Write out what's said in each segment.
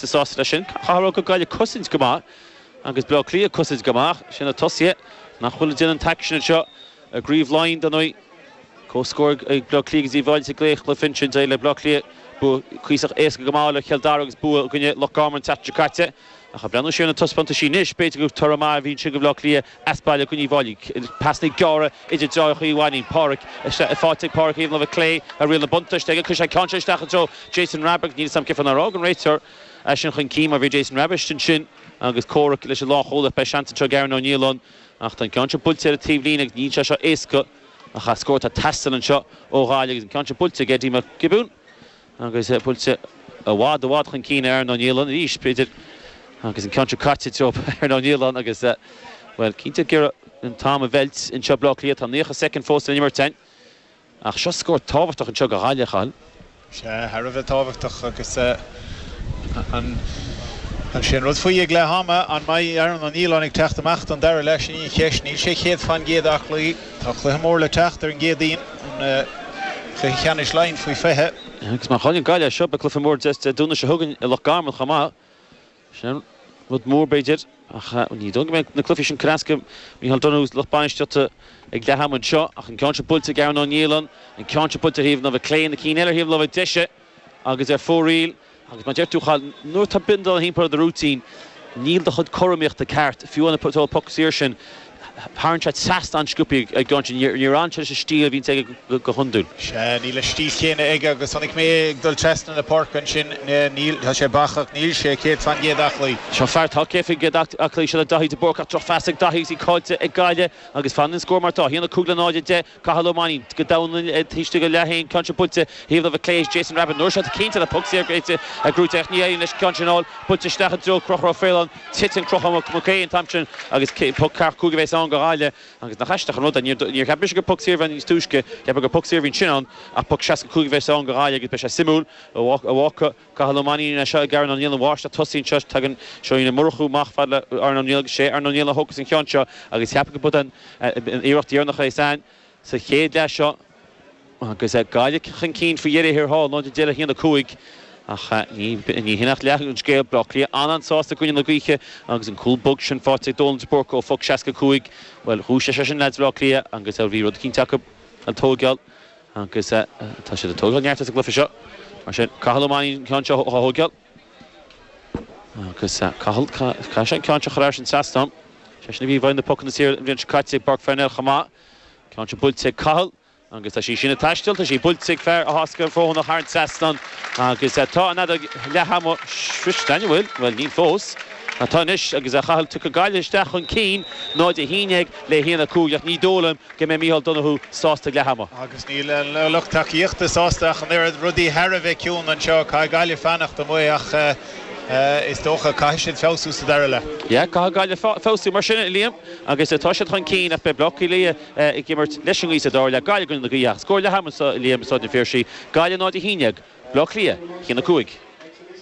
Tá sásta leis sin. Chaithfeá a rá go bhfuil Gaillimh ag cosaint go maith agus Bleá Cliath ag cosaint go maith. Is iad na tosaithe nach bhfuil ag déanamh an t-aicsean anseo i gCraobh Laighean dar ndóigh. Comhscór ag Bleá Cliath ag Uíbh Fhailí sa gcéad chluiche Finchins é le Bleá Cliath. Bua cuíosach éasca go maith le Cill Dara agus bua i gcoinne Loch Garman an tseachtain seo caite. Ach ag breathnú siar ar na taispeántaisí anois b'fhéidir gur toradh maith a bhí ansin go Bleá Cliath. as baile i gcoinne Uíbh Fhailí. Pasanna gearra idir deartháireacha Uí Mhainnín, Páraic. Tá sí faighte ag Páraic ar thaobh na láimhe clé, tá riail na buntáiste aige. Cuirfidh sé an ceann seo isteach i dtreo Jason Rabbitte. Níl a fhios agam cén fáth nár lig an réiteoir é sin chun cinn mar bhí Jason Rabbitte ansin agus comhrac leis an lánchúlaí. Beidh seans anseo ag Aaron Ó Nialláin ach tá an ceann seo buailte ar an taobhlíne agus níl sé seo éasca. Tá scór ag teastáil anseo ó Ghaillimh agus an ceann seo buailte ag Eddie Mac Giobúin. Agus buailte i bhfad i bhfad chun cinn ag Aaron Ó Nialláin arís, b'fhéidir, agus an ceann seo caite i dtreo Aaron Ó Nialláin agus, bhuel, cinnte ag iarraidh an t-am a mheilt anseo i mBleá Cliath. Tá 90 soicind fós le n-imirt ann ach seo scór tábhachtach anseo go Ghaillimh, a Chathail. Sea, thar a bheith tábhachtach agus is é an rud faoi ag leath ama, an mbeidh Aaron Ó Nialláin ag teacht amach don dara leath, sin í an cheist. Níl sé céad fán gcéad aclaí. Tá cluiche mór le teacht ar an gCéadaoin, an cluiche ceannais Laighean faoi 20. Agus má chailleann Gaillimh é seo, beidh cluiche mór Dé Domhnaigh seo chugainn i Loch Garman chomh maith. Sin rud mór, b'fhéidir, ach ní dóigh liom go mbeidh na cluichí sin ag cur as do Mhicheál Donoghue, lucht bainistíochta ag leath ama anseo ach an ceann seo buailte ag Aaron Ó Nialláin, an ceann seo buailte ar thaobh na láimhe clé, na cinn eile ar thaobh láimhe deise agus ar fóraoil. Agus mar a deir tú, a Chathail, nuair atá bindealán timpeall ar do rúitín, níl do chuid cothromaíochta ceart, fiú an tseó poc saor sin, tharraing sé seasta an-sciobtha ar an gceann sin. Níor fhan sé leis an stíl a bhíonns aige go hiondúil. Sea, níl an stíl chéanna aige agus chonaic mé é ag dul trasna na páirce ansin. Níl, tá sé bacach, níl sé céad fán gcéad aclaí. Seo an fear atá céad faoin gcéad aclaí, sin é Daithí de Búrca. Drochphas ag Daithí agus í caillte ag Gaillimh agus fanann an scór mar atá, 1-5 le 0-10. Cathal Ó Mainín, Go domhain taobh istigh dá leath féin, an ceann seo buailte thaobh na láimhe clé ag Jason Rabbitte. An uair seo cinnte le puc saor go eite a gcrúite ach ní éiríonn leis an ceann sin a fháil. Buailte isteach i dtreo Conchúr Ó Faoláin. Titeann Conchúr Mac Aodha an t-am sin agus puc seasca cúig a bhéas ann go Ghaillimh. Agus nach aisteach an rud é, níor cheap mise gur puc saor a bhí ann níos túisce. Cheapfá gur puc saor a bhí ansin ann ach puc seasca cúig a bhéas ann go Ghaillimh agus beidh sé suimiúil an bhfágfaidh. Cathal Ó Mainnín é seo ag Aaron Ó Nialláin, an mháistir tosaigh anseo. Tagann Johnny Ó Murchú amach fad le Aaron Ó Nialláin agus sé Aaron Ó Nialláin a thógfas an ceann seo agus cheapfainn gurb é an iarracht dheireanach é san sa chéad leath seo agus Gaillimh chun cinn faoi dheireadh thiar thall, 0-10 le 1-5. Ach ní hin ach leath an scéal, Bleá Cliath an-an-sásta i gcoinne na gaoithe agus an cúl bog sin faighte ag Dónal de Búrca ó phoc 65. Bhuel, dhúisigh sé sin leaids Bhleá Cliath agus bhí rud eicínt acu a tóigeáil. Agus tá siad ag tógáil neart as an gcluiche seo, mar sin. Cathal Ó Mainnín an ceann seo a thógáil. Agus Cathal, caithfidh sé an ceann seo a chur thar an trasnán. Is eisean a bhí i bhfeighil na pucanna saor an bhliain seo caite i bPáirc Parnell chomh maith. Ceann seo buailte ag Cathal. Agus tá sí sin ag taisteal. Tá sí buailte ag fear Áth Eascrach Fóthanach thar an trasnán. Agus tá an fheadóg leathama sroichte, an bhfuil? Bhuel, níl fós. Tá anois, agus Cathal tugtha Gaillimh isteach chun cinn, 0-11 le 1-5, ach ní dóigh liom go mbeidh Micheál Donoghue sásta ag leath ama. Agus níl an lucht tacaíochta sásta ach an oiread. Rudaí thar a bheith ciúin anseo. Caithfidh Gaillimh fanacht amuigh ach is dócha caithfidh siad feabhsú sa dara leath. Yeah, caithfidh Gaillimh feabhsú mar sin, a Liam, agus tá siad chun cinn ach beidh Bleá Cliath ag imirt leis an ngaoth sa dara leath. Gaillimh i gcoinne na gaoithe ach scór leath ama anseo, a Liam, i Staid an Phiarsaigh, Gaillimh 0-11. Bleá Cliath, 1-5.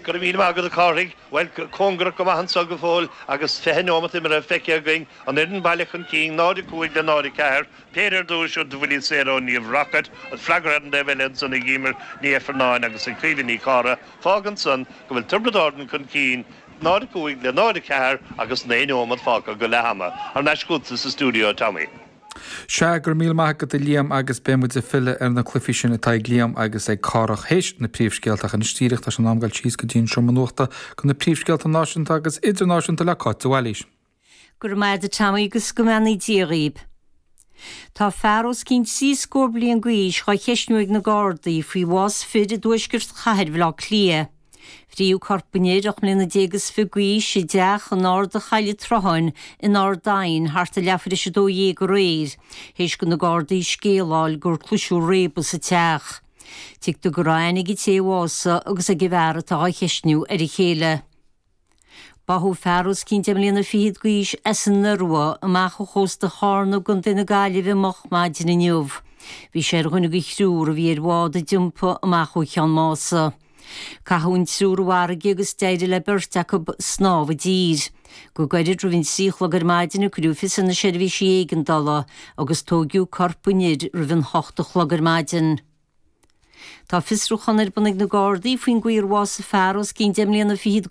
Go raibh míle maith agat a Chárthaigh. Bhuel, cóngarach go maith anso go fóill agus fiche neomat imeartha feicthe againn, an fhoireann baile chun cinn, 0-5 le 0-4, péire ar dtúis ó dhá bhuille saor ó Niamh Rockett, freagartha ar an dtaobh eile ansan ag Eimear Ní Ifearnáin agus ag Caoimhe Ní Chárthaigh. Fágann san go bhfuil Tiobraid Árann chun cinn, 0-5 le 0-4 agus naoi neomat fágtha go leath-ama. Thar n-ais chughatsa sa stiúideo, Tommy. Sea, go raibh míle maith agat a Liam agus beidh muid ag filleadh ar na cluifí sin atá ag Liam agus ag Cárthach théis na príomhscéalta ach anois díreach tá sé in am dul síos go dtí an seomra nuachta go na príomhscéalta náisiúnta agus idirnáisiúnta le Cáit de Bhailís. Go raibh maith agat Tommy agus go mbeannaí Dia dhaoib. Tá fear os cionn trí scór bliain d'aois dhá cheisniú ag na Gardaí faoi bhás fir i dtuaisceart chathair Bhaile Átha Cliath. Fritheadh corp an fhir, ocht mbliana déag is fiche d'aois, i dteach in Arda Choill an tSrutháin in Ard Aidhin thart ar leathuair théis a dó dhéag aréir, théis do na Gardaí scéala a fháil gur cloiseadh réabadh sa teach. Tuigtear go raibh aithne ag an té a bhásaigh agus ag an bhfear atá á cheistiú ar a chéile. Báthadh fear os cionn deich mbliana fichead d'aois as an Iorua amach ó chósta Charna i gContae na Gaillimhe moch maidin inniu. Bhí sé ar dhuine de thriúr a bhí ar bhád a d'iompaigh amach ó Cheann Mása. Caitheadh an triúr i bhfarraige agus d'éirigh le beirt acu snámh i dtír. Go gairid roimh an trí a chlog ar maidin cuireadh fios ar na seirbhísí éigeandála agus tóigeadh corp an fhir roimh an hocht a chlog ar maidin. Tá fiosrúchán ar bun ag na Gardaí faoin gcaoi ar bhásaigh fear os cionn deich mbliana fichead